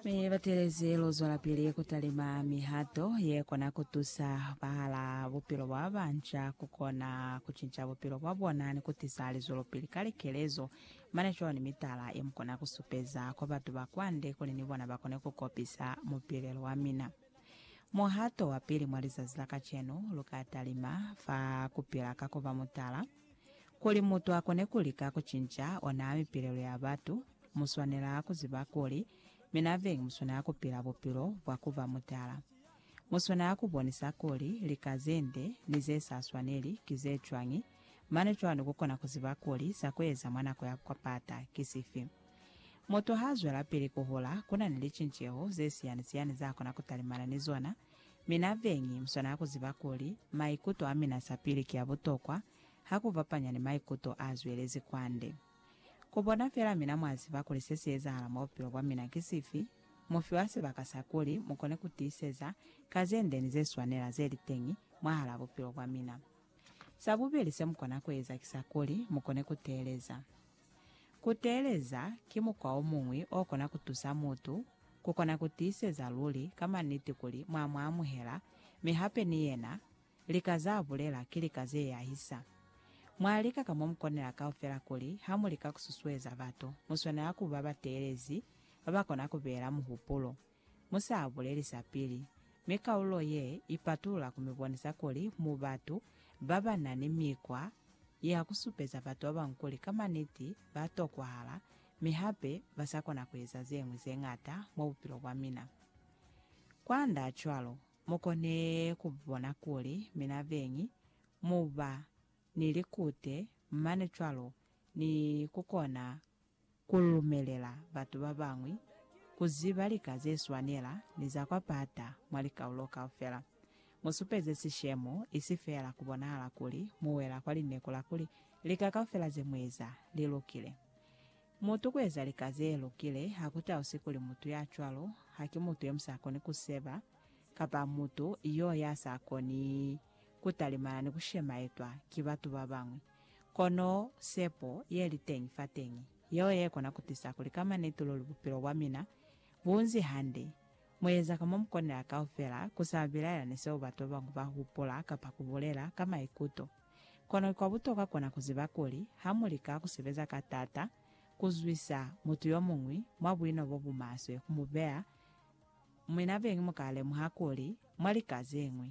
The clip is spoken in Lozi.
Mi batelezi lu zwelapili ku talima mihato ye kona ku tusa bahala bupilo bwa ba banca ku kona ku cinca bupilo bwa bona ni ku tisa lizwelopili ka likelezo. Mane cwalo ni mitala ye mu kona ku supeza kwa batu ba kwande kuli ni bona ba kone ku kopisa mupilelo wa mina. Muhato wa pili mwa lizazi la kacenu, lu ka talima fa ku pila ka ku ba mutala. Kuli mutu akone kulika kucinca ona mipilelo ya batu, muswanela kuziba kuli mina veñi muswanela kupila bupilo bwa kuba mutala. Muswanela kubonisa kuli lika zende ni zesa swaneli ki zecwañi, mane cwalo kukona kuziba kuli sa kueza mwa nako ya kupata ki sifi. Mutu haazwelapili kuhula, kunani licinceho zesiyani-siyani zaakona kutalimana ni zona, Mina beñi muswanela kuziba kuli maikuto amina sapili ki abutokwa ha kufapanya ni maikuto azwelezi kwande. Kubona fela mina mwaziba kuli sesiezahala mwa bupilo bwamina ki sifi, mufiwa sibaka sa kuli mukone kutiiseza ka zende ni zeswanela zeliteñi mwahalaa bupilo bwamina. Sabubili semukona kueza ki sa kuli mukone kuteeleza. Ku teeleza ki mukwa o muñwi o kona ku tusa mutu ku kona ku tiiseza luli ka maniti kuli mwa mu amuhela mi hape ni yena lika z'a bulela ki lika ze yahisa. Mwa lika ka mo mu konela kaufela kuli ha mu lika ku susueza batu, mu swanela ku ba bateelezi ba ba kona ku beela muhupulo. Mu sa buleli sa pili, mi kaulo ye i patulula ku mi bonisa kuli mu batu ba ba na ni mikwa ya ku supeza batu ba bañwi kuli ka maniti ba tokwahala mi hape ba sa kona ku eza ze ñwi ze ñata mwa bupilo bwa mina. Kwand'a cwalo, mu kone ku bona kuli mina beñi mu ba ni likute mane cwalo ni ku kona Ku lumelela batu ba bañwi ku ziba lika ze swanela ni za kwa pata mwa likaulo kaufela, mu supeze sishemo, isi feela ku bonahala kuli mu wela kwa lineku la kuli lika kaufela ze mu eza li lukile. Mutu ku eza lika ze lukile ha ku tausi kuli mutu ya cwalo ha ki mutu yo mu sa koni ku seba, kapa mutu yo ya sa koni ku talimana ni ku shemaetwa ki batu ba bañwi. Kono sepo ye li teñi fateñi yeo ye kona ku tisa kuli ka maniti luli bupilo bwa mina bu nzi hande. Mu eza ka mo mu konela kaufela, ku sa bilaela ni seo batu ba bañwi ba hupula kapa ku bulela ka maikuto. Kono kwa butokwa kona ku ziba kuli ha mu lika ku sebeza ka t'ata ku zwisa mutu yo muñwi mwa buino bo bu maswe ku mu beya, mwinabeñi mu ka lemuha kuli mwa lika ze ñwi.